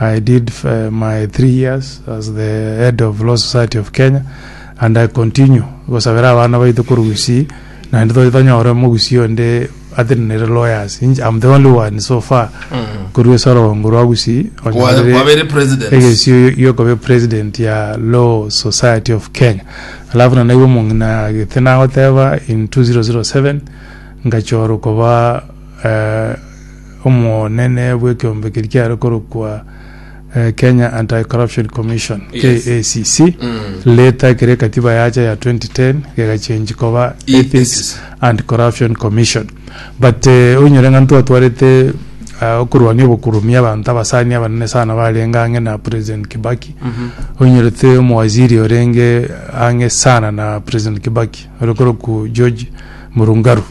I did my three years as the head of Law Society of Kenya and I continue gosabera abana baito korwa Gusii naende toche tonyore omogusii onde atari nere lawyers inche am the only one so far korwa esorongo rwa Gusii Kwa- onyorire kwabere president egesio giokoba president ya Law Society of Kenya alafu na naigwe omong'ina agete nagoteba in 2007 ngachorwa koba eh, omonene bw'ekeombe keria kiare korokwa eh, Kenya Anti-Corruption Commission, Yes. KACC, Mm. leta ekero ekatiba yacha ya 2010 gegachenji koba E- Ethics Ethics. and Corruption Commission. But eh, oinyore ng'a ntwatwarete ah, okorwania obokurumi abanto abasani abanene sana barenge ang'e na President Kibaki Mhm. oinyorete omowaziri orenge ang'e sana na President Kibaki ore korokwa George Murungaru